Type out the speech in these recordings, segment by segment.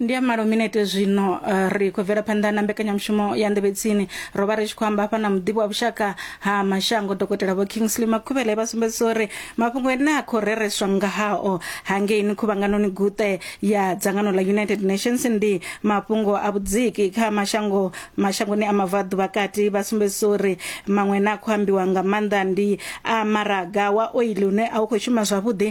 ndi ya malo minete zwino uh, ri khou bvela phanḓa na mbekanyamushumo ya nḓevhetsini ro vha ri tshi khou amba hafha na muḓivhi wa vhushaka ha mashango dokotela vho kingsley makhuvhele vha sumbedzisa uri mafhungo ene a khou rereswa nga hao hangeini khuvhanganoni guṱe ya dzangano la united nations ndi mafhungo a vhudziki kha mashango mashangoni a mavaḓu vhakati vha sumbedzisa uri maṅwe ane a khou ambiwa nga maanḓa ndi a maraga wa oil une a u khou shuma zwavhuḓi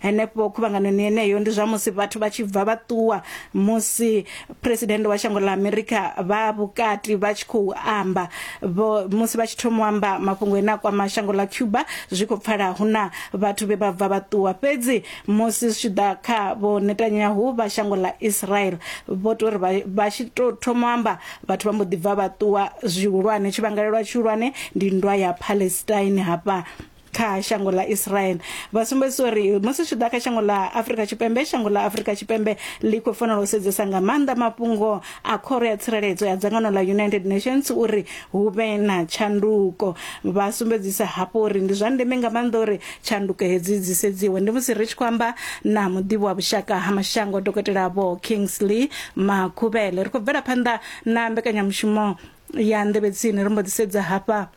Henefho khuvhanganoni yeneyo ndi zwa musi vhathu vha tshi bva vha ṱuwa musi president wa shango ḽa America vha vhukati vha tshi khou amba vho musi vha tshi thoma amba mafhungo ena kwama shango ḽa Cuba zwi khou pfala huna vhathu vhe vha bva vha ṱuwa fhedzi musi zwi ḓa kha vho Netanyahu vha shango ḽa Israel vho tori vha tshi to thoma amba vhathu vha mbo ḓi bva vha ṱuwa zwihulwane tshivangalelwa tshihulwane ndi ndwa ya Palestine hafha kha shango ḽa Israel vha sumbedzisa uri musi zwi ḓa kha shango ḽa Afrika Tshipembe shango ḽa Afrika Tshipembe ḽi khou fanela u sedzesa nga maanḓa mafhungo a khoro ya tsireledzo ya dzangano ḽa United Nations uri hu vhe na tshanduko vha sumbedzisa hafhu uri ndi zwa ndeme nga maanḓa uri tshanduko hedzi dzi sedziwe ndi musi ri tshi khou amba na muḓivhi wa vhushaka ha mashango dokotela vho Kingsley Makhubele ri khou bvela phanḓa na mbekanyamushumo ya nḓevhetsini ri mbo ḓi sedza hafha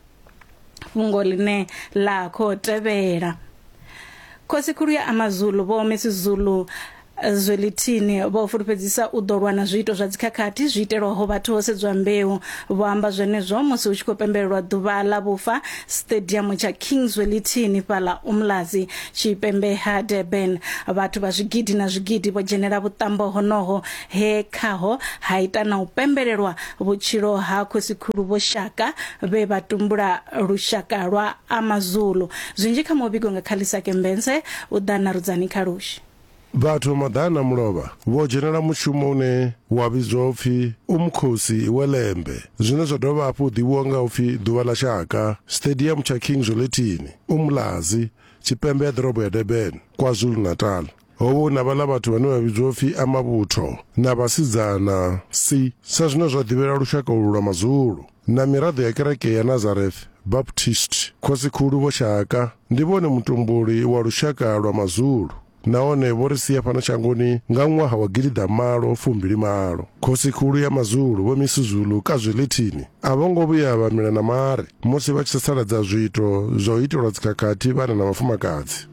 fhungo ḽine ḽa khou tevhela khosi khulu ya amazulu vho mesi zulu zwelithini vho fulufhedzisa u ḓo lwa na zwiito zwa dzikhakhathi zwi itelwaho vhathu ho sedzwa mbeu vho amba zwenezwo musi hu tshi khou pembelelwa ḓuvha ḽa vhufa stadium tsha king zwelithini fhala umlazi tshipembe ha durban vhathu vha zwigidi na zwigidi vho dzhenela vhuṱambo honoho he khaho ha ita na u pembelelwa vhutshilo ha Khosikhulu Vho Shaka vhe vha tumbula lushaka lwa AmaZulu. Zwinzhi kha muvhigo nga Khalisake Mbhense, u ḓa na Rudzani Khalushi. Vhathu maḓana mulovha vho dzhenela mushumo une wa vhidzwa u pfi Umkhosi Iwelembe, zwine zwa dovha hafhu u ḓivhiwa nga u pfi Ḓuvha ḽa Shaka, Stadium tsha King Zwelithini, Umlazi, Tshipembe ya Ḓorobo ya Durban, KwaZulu-Natal. Ho vha hu na vhaḽa vhathu vhane vha vhidzwa u pfi Amavhutho, na vhasidzana, si, sa zwine zwa ḓivhela lushaka ulwu lwa Mazulu, na miraḓo ya kereke ya Nazareth Baptist. Khosi-khulu Vho Shaka ndi vhone mutumbuli wa lushaka lwa Mazulu nahone vho ri sia fhano shangoni nga ṅwaha wa gidiḓamalo fumbili malo. Khosi-khulu ya Mazulu Vho Misuzulu ka Zwelithini a vho ngo vhuya vha mila na mare musi vha tshi sasaladza zwiito zwa u itelwa dzikhakhathi vhana na vhafumakadzi.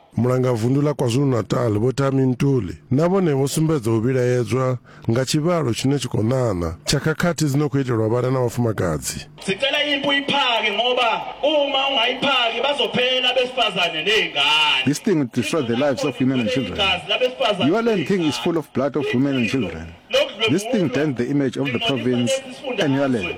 Mulanga vundu ḽa KwaZulu-Natal Vho Thami Ntuli na vhone vho sumbedza u vhilaedzwa nga tshivhalo tshine tshi khou ṋaṋa tsha khakhathi dzi no khou itelwa vhana na vhafumakadzi. Sicela impi uyiphake ngoba uma ungayiphaki bazophela abesifazane nezingane. This thing destroy the lives of women and children. Your land king is full of blood of women and children. This thing dent the image of the province and your land.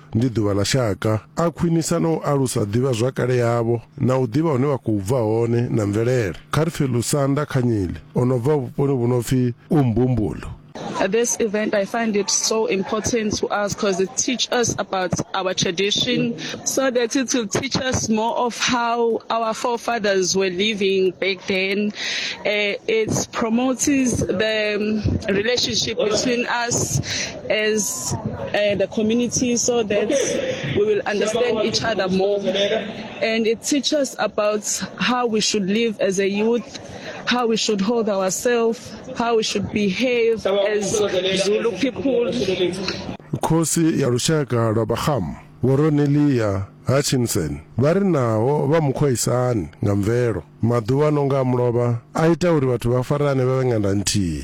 ndi ḓuvha ḽa shaka a khwinisa na u alusa ḓivha zwakale yavho na u ḓivha hune vha khou bva hone na mvelele kha ri pfhe lusanda khanyile o no bva vhuponi vhu no pfi umbumbulo At this event, I find it so important to us because it teaches us about our tradition so that it will teach us more of how our forefathers were living back then. Uh, it promotes the um, relationship between us as uh, the community so that we will understand each other more. And it teaches about how we should live as a youth, how we should hold ourselves, how we should behave as Zulu people. khosi ya lushaka lwa bakhamu vho roneliya hutchinson vha ri naho vha mu khoisani nga mvelo maḓuvha a no nga a mulovha a ita uri vhathu vha farane vha vhe nganda nthihi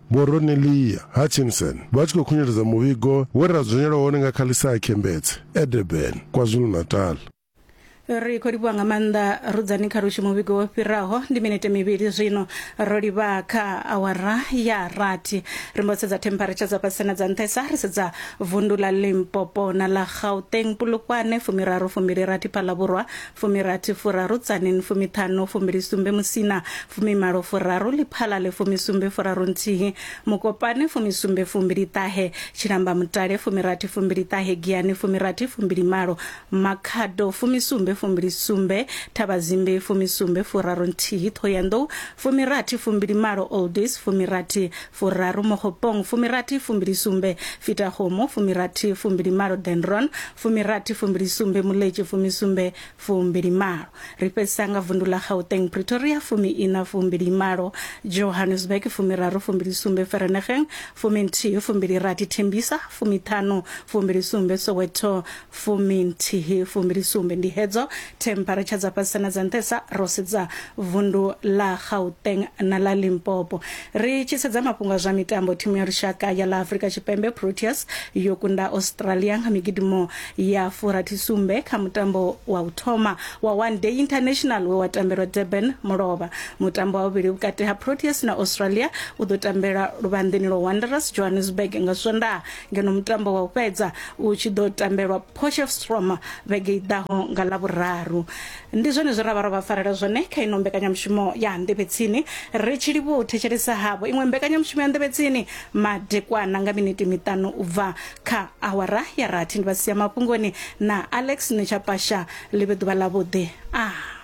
Vho Ronelia Hutchinson vha tshi khou khunyeledza muvhigo we ra dzunyelwa wone nga kha Lisaya Khembetse, e Durban, KwaZulu-Natal. Ri khou livhuwa nga maanḓa Rudzani Khalushi muvhigo wo fhiraho. Ndi minete mivhili zwino ro livha kha awara ya rathi. Ri mbo sedza thempharetsha dza fhasisa na dza nṱhesa, ri sedza vundu ḽa Limpopo na ḽa Gauteng, Pulukwane fumiraru fumbili rathi Phalabvhurwa Fumirathi, furaru, Tsanin, fumiṱhanu, fumbilisumbe, Musina, fumimalo, furaru, Liphalale, fumisumbe, furarunthihi, Mukopane, fumisumbe, fumbiliṱahe, Tshilambamutale, fumirathi, fumbiliṱahe, Giyani, fumirathi, fumbilimalo, Makhado, fumisumbe, fumbilisumbe, Thavhazimbei, fumisumbe, furarunthihi, Thohoyandou, fumirathi, fumbilimalo, Oldies, fumirathi, furaru mohopong fumirathi fumbilisumbe fitahomo fumirathi fumbilimalo denron fumirathi fumbilisumbe muletshi fumisumbe fumbilimalo ri fhedzisa nga vundu ḽa gauteng pretoria fumiina fumbilimalo johannesburg fumiraru fumbilisumbe ferenegeng fuminthihi fumbilirathi thembisa fumiṱhanu fumbilisumbe soweto Fuminthihi, fumbilisumbe ndi hedzo thempharetsha dza fhasisa na dza nṱhesa ro sedza vundu ḽa Gauteng na ḽa Limpopo. Ri tshi sedza mafhungo a zwa mitambo, thimu ya lushaka ya ḽa Afrika Tshipembe Proteas yo kunda Australia nga migidimo ya furathisumbe kha mutambo wa u thoma wa One Day International we wa tambelwa Durban Mulovha. Mutambo wa vhuvhili vhukati ha Proteas na Australia u ḓo tambela luvhanḓeni lwa Wanderers Johannesburg nga Swondaha ngeno mutambo wa u fhedza u tshi ḓo tambelwa Potchefstroom vhege i ḓaho nga Lavhuraru. Ndi zwone zwe ra vha ro vha farela zwone kha ino mbekanyamushumo ya Nḓevhe Tsini. Ri tshi livhuwa u thetshelesa havho iṅwe mbekanyamushumo ya Nḓevhe Tsini madekwana nga miniti miṱanu u bva kha awara ya rathi. Ndi vha sia mafhungoni na Alex Nitshapasha, ḽi vhe ḓuvha ḽavhuḓi. Ah.